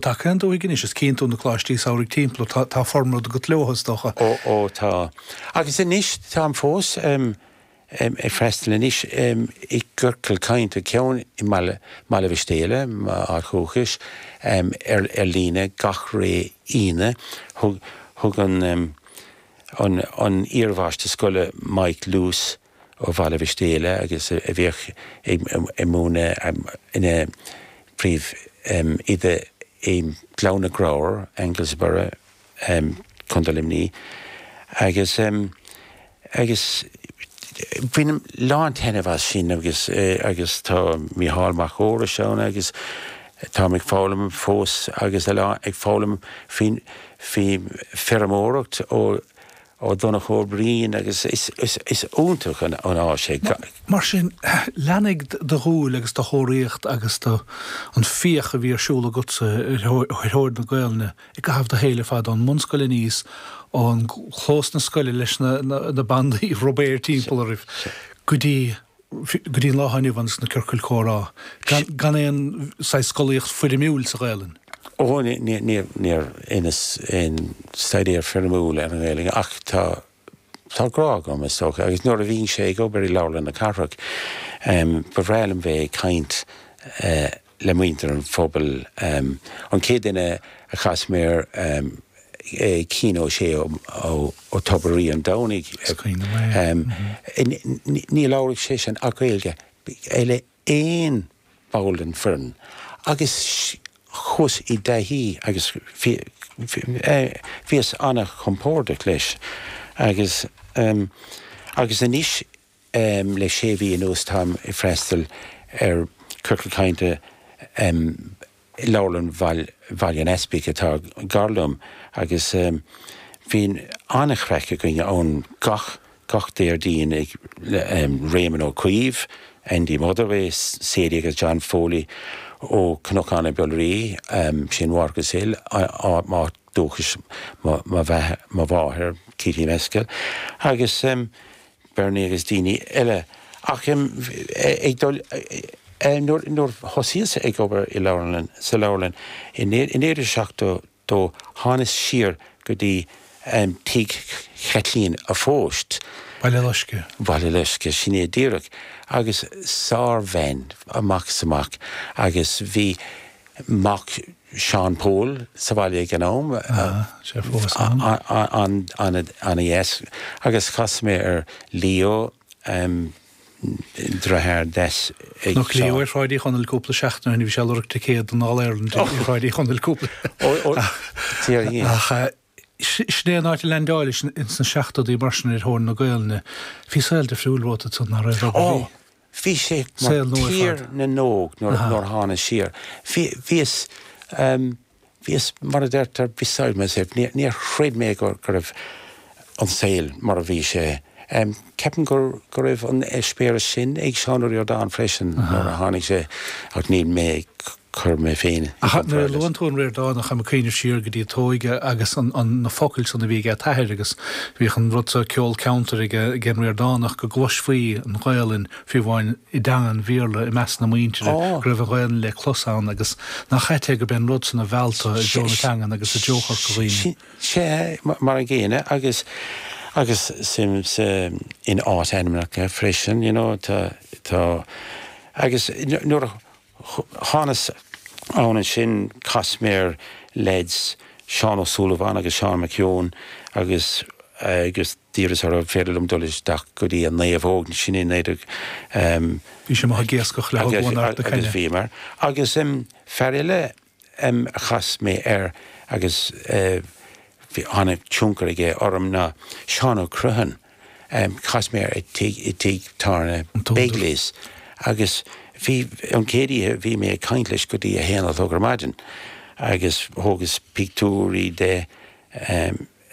Tá ceann Dubhthaigh anois is Ceann Trá na coláistí samhraidh timpeall tá tá formad agat leotha is dócha. Ó ó tá. Agus anois táim fós em em ag freastal anois em i gciorcal cainte ceann i mBaile mBaile Mhistéala, m'áit dhúchais, em ar ar líne gach ré Aoine thug thug an em an an iarmháistir scoile Mike Luce, ó Bhaile Mhistéala agus a bhíodh ag múineadh ina phríomhoide i nGleann na gCreabhar, Anglesborough, Contae Luimní, agus agus bainim a lán taitneamh as sin agus agus tá Micheál Mac Fheorais ann agus táim ag foghlaim fós agus a lán ag foghlaim faoin faoi fheirmeoireacht ó Ó Donncha Ó Briain agus is iontach an áis é. Mar sin, lean do dhúil agus do thóraíocht agus do, an fiach a bhí ar siúl agatsa ar thóir na Gaolainne i gcaitheamh do shaoil ar fad, ón mbunscoil aníos, ó chlós na scoile leis na bandaí rubair timpeall oraibh, go dtí. go dtí an lá atá inniu ann sna ciorcail chomhrá, gan aon saghas scolaíocht foirmiúil sa Ghaelainn. Ó, níor dheineas aon staidéar foirmiúil ar an nGaelainn, ach tá grá agam, is dócha, agus nuair a bhíos-sa ag obair i Leabharlann na Cathrach, ba bhreá liom bheith ag caint. le muintir an phobail. An chéad duine a chas mé air, Cian Ó Sé ó Tobar Rí an Domhnaigh, is cuimhin liom é, ní labhraíodh seisean ach Gaeilge, le aon ball den foireann, agus chuas i dtaithí agus bhíos an-chompordach leis. Agus anois Le sé mhí anuas táim ag freastal ar Chiorcal Cainte i Leabharlann Bhaile an Easpaig atá gar liom agus bíonn an-chraic againn ann gach Déardaoin ag Réamonn Ó Caoimh, Andy Motherway, Sadie agus John Foley ó Cnocán na Biolraí, sin Watergrasshill, áit dúchais mo mháthar, Katie Mescal, agus Berni agus daoine eile. Ach em ag dul eh nuair, nuair thosaíos ag obair i leabharlann, sa leabharlann i naoi, i naoi déag seachtó dó thánas siar go dtí em tigh Chaitlín a' Phoist, Baile Loisce. Baile Loisce, sin é díreach, agus sár-bhean amach is amach agus bhí, mac Sheáin Póil sa bhaile ag an am, an i-s, agus chas mé ar Leo, dritháir des ag Mac Leo ar Shráid Uí Chonaill cúpla seachtain ó shin, bhí sé ag lorg ticéad don All Ireland ar Shráid Uí Chonaill cúpla, ach. Sin é an áit a leaindeáilis ins na seachtóidí mar sin ar thóir na Gaelainne. Bhí saol difriúil romhat ansan, nach raibh? Ó, bhí sé mar Tír na nÓg nuair a thána siar. Bhíos, bhíos, mar a deirtear, beside myself. Níor chreid mé go raibh an saol mar a bhí sé. Ceapaim go raibh an eispéireas sin ag Seán Ó Ríordáin freisin nuair a tháinig sé ach níl mé ag cur mé féin i gcomparáid leis. Ach nuair a luann tú an Ríordánach, táim ag cuimhneamh siar go dtí t'óige agus an, an, na focail san a bhí ag t'athair agus bhíodh an rud so, ceol ceantair ag a', ag an Ríordánach go gcloisfí an Ghaolainn fiú amháin i dteanga an Bhéarla i measc na muintire, Á! go raibh an Ghaolainn le clos ann agus nach ait é go b'é an rud san a mheall tú i dtreo na teangan agus i dtreo Chorca Dhuibhne. Sea, mar an gcéanna agus, agus suim sa, in áit-ainmneacha freisin, you know, tá, tá, agus nuair a, Thánas ann ansin, chas mé ar leaids, Seán Ó Súilleabháin agus Seán McKeown, agus agus d'iarras orthu féidir liom dul isteach go dtí an naomhóg, sin i 19 em. Bhíos amach ag iascach le haghaidh bhuanáit na cainne. Agus bhíomar, agus em fear eile ainm a chas mé air agus tháinig tionchar aige orm ná Seán Ó Criomhthain. Chas mé air i dtigh tábhairne Begley's agus bhí, an chéad oíche bhí mé ag caint leis go dtí a haon a chlog ar maidin agus thógas pictiúirí de.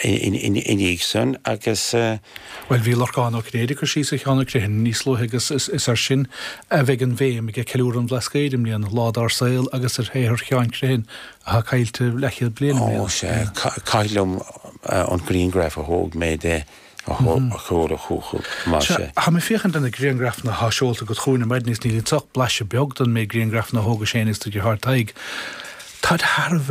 i ndiaidh san agus. Bhuel, bhí Lorcán Ó Cinnéide ag cur síos ar Sheán Ó Criomhthain níos luaithe agus is ar sin a bheidh an bhéim aige, Ceiliúradh an Bhlascaoid i mbliana, Lá Dár Saol agus ar shaothar Sheáin Uí Chriomhthain atá caillte leathchéad bliain i mbliana. Ó sea, caithfidh liom an grianghraf a thóg mé de a thabhairt chucu, más ea. Sea, tá mé ag féachaint ar na grianghrafanna atá seolta agat chugainn, ar maidin, is níl iontu ach blaiseadh beag den méid grianghrafanna a thógais féinig is do dheartháir Tadhg. Táid thar a bheith.